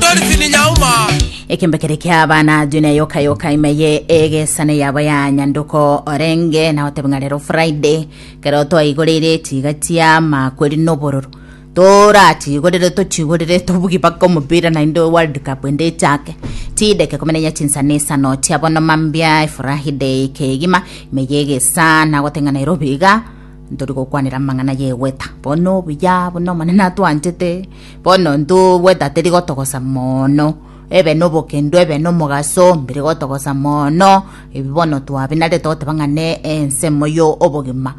Dolphin Nyauma. ekembe kere kiabana dune yoka yoka ime ye egesane yabo ya nyanduko orenge na otebe ng'a rero friday kero twaigorire tiga tia makweri nobororo toratigorire tochigorire tobugi baka omopira naende world cup ende echake tideke komenenya chinsa na isano tia bono mambia efurahi day kegima ime ye egesa nagote ng'a nairobi iga ntori gokwanera amang'ana yegweta bono buya buna omonene atwanchete Bono ntubwe tatiri gotogosa mono ebe nobokendo ebe nomogaso mbiri gotogosa mono ebi bono twabi nare togoteba ng'a ne ensemo yo obogima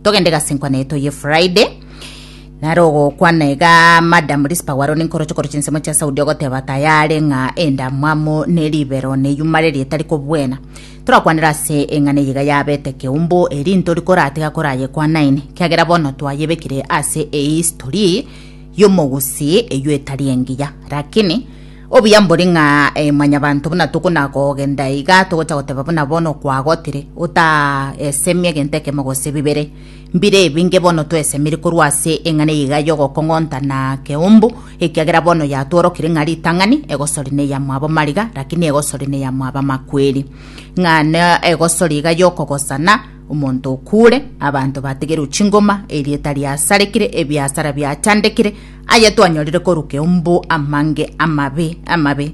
togende gasenkwa naye toye friday nare ogokwana iga madam rispa gwaro ninkoroche koroche ensemo chia saudi ogoteba tayare ng'a endamwamu ne ribero neyuma reri etari kobwena torakwanera ase eng'ana eyiga yabete keumbu eri ntori koratiga korayekwanaine kiagera bono twayebekire ase ehistory y'omogusii eyio etari engiya. Rakini, obuya mbore ng'a eh, mwanyabanto buna tokonakogenda iga, togocha goteba buna bono kwagotire, otaesemia egento ekemo gose bibere. Mbire ebinge bono toesemiri korwa ase eng'ana eye iga y'ogokong'onta na keumbu, ekiagera bono yatworokire ng'a ritang'ani egosori neyamwabo mariga, rakini egosori neyamwabo amakweri. Ng'a ne egosori iga y'okogosana, Omonto okuure, abanto bategerwe chingoma, erieta riasarekire, ebiasara biachandekire, aya twanyorire korwa keumbu amange amabe amabe.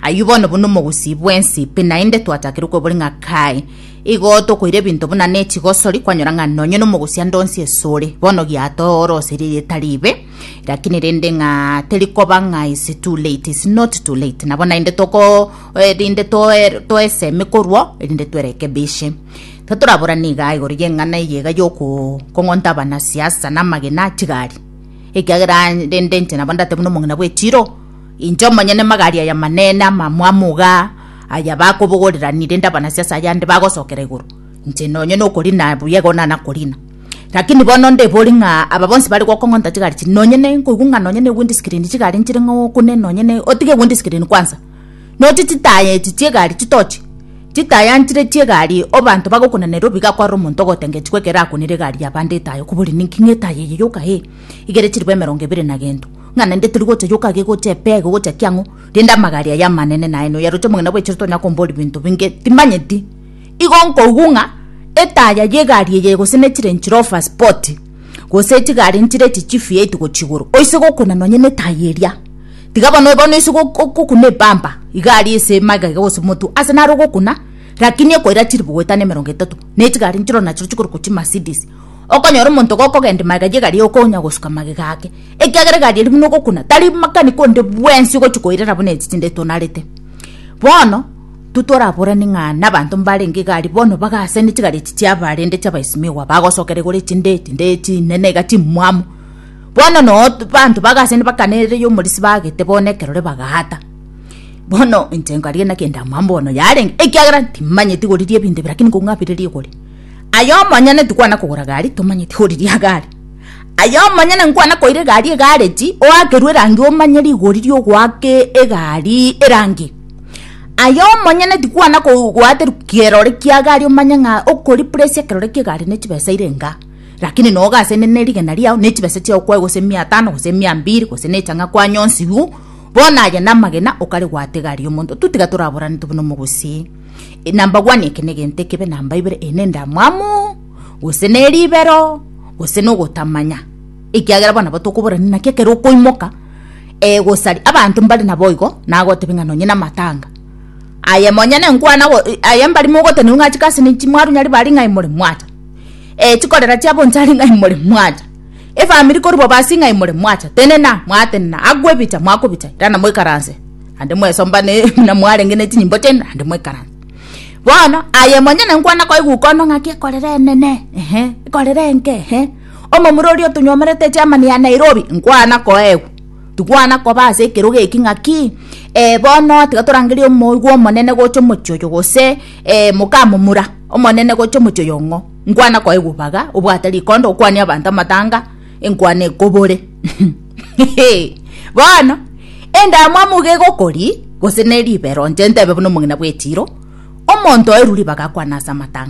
Ayio bono buna omogusii bwensi, pi naende twachakire kwebori ng'a kae. Igo tokoira ebinto buna nechigosori, kwanyora ng'a nonye nomogusi ande onsi esore, bono giatooroseria erieta riibe, lakini rende ng'a terikoba ng'a is too late, is not too late. Nabo naende toko eh, rinde toe- toesemi korwa, erinde twerekebishe. Totoraborane igaa igoro y'eng'ana eyega y'okong'onta abana siasa na amagena a chigari, ekiagera rende inche nabo ndateba buna omong'ina bw'echiro, inche omonyene magari aya manene amamwamu igaa aya bakobogoreraniri rende abana siasa ayande bagosokera igoro, inche nonye na okorina buya igo nana korina. Rakini bono ndebori ng'a aba bonsi bare gokong'onta chigari echi nonye ne nkoigwa ng'a nonye ne windscreen chigari nchire ng'a okune nonye ne otige windscreen kwanza. no chitaya echi chiegari chitoche chitaya nchire chiegari obanto bagokunana erobi gakwara omonto ogotengetigwa ekero akunire egari yabande etaya okobori ninki ng'a etaya eye yoka ee igere chiribo emerongo ebere na gento ng'a naende tori gocha yoka iga egocha epea iga egocha ki ang'o rende amagari aya amanene naye noyo aroche omogina bwa echiro tonya kombori ebinto binge timanyeti igo nkoigwa ng'a etaya yegari eye gose nechire nchire ofa spoti. Gose tiga arentire echichifu yaito gochia igoro, oise gokuna nonya netayi eria. Tiga bono bono oise go go gokuna ebamba, iga aria ase emaiga iga gose motwe, ase naro ogokuna, rakini ekoira chiribugo etano emerongo etato, na etiga aria nchiro nachiro chikoruko chimercedes. Okonyora omonto gokogenda emaiga ye egari okonya gosuka magega ake, ekiagera egari eria buna ogokuna, tari makanika onde bwensi ogochi koirera buna echi chinde etonarete. Bono. Totoraborane ng'a nabanto mbarenge igari bono bagase ne chigari echi chiabarende chi'abaisimiwa bagosokera igoro echinde chinde chinene iga chimwamu. Bono noo banto bagase nibakanerire y'omorisia bagete bono ekerore bagaata. Bono inche nkaria naki ndamwabo bono yarenge ekiagera timanyeti igoriria ebinto ebi lakini kong'u abirerie igori. Aye omonyene tikwana kogora gari tomanyeti igoriria gari. Aye omonyene nkwana koira egari egareji oakerwe erangi omanye rigori riogoaka egari erangi. Aye omonyene tikwana kogwaterwa kerore ki'egari omanye ng'a okoripresi ekerore ki'egari ne chibesa ire enga, rakini na ogasenene rigena riao ne chibesa chiao kwaigwa gose mia tano gose mia mbiri gose ne chang'a kwanyonsirwu, bono aye namagena okaregwata egari y'omonto. Totiga toraborane tobe nomogusii, na mbabwani eke negento ekebe namba ibere, eye nendamwamu, gose neribero, gose nogotamanya, ekiagera bono nabo tokoborani naki ekero okoimoka. Ee, gosaria abanto mbare naboigo, nagotebia ng'a nonye namatanga. Aye monyene nkwana aye mbari mogotenigwa ng'a chikasi nichi mwarunya riba ring'ai more mwacha. Ee, chikorera chia bonsa ring'ai more mwacha. Efamiri korwa bobasi ng'ai more mwacha. Tenena, mwatenena, agwo ebicha mwakobicha, irana moikaranse. Naende mwesombane buna mwarenge ne chinyimbo chiaino, naende moikaranse. Bono, aye monyene nkwana koigwa ukono ng'aki ekorera enene, ehe, ekorera enke, ehe. Omomura oria otonyomerete Germany ya Nairobi nkwana koegwa. Tikwana koba ase ekerogo eki ng'aki eh, bono tiga torangerie omoigwa omonene gocha omochie oyo gose eh, mokamomura omonene gocha omochie oyo ng'o. Nkwana koegwa baga obwate rikondo okwanie abanto amatanga enkwana ekobore. Bono endamwamu iga egokori gose ne ribero inche ntebe buna omogina bw'echiiro, omonto oerwa ribaga akwane ase amatanga.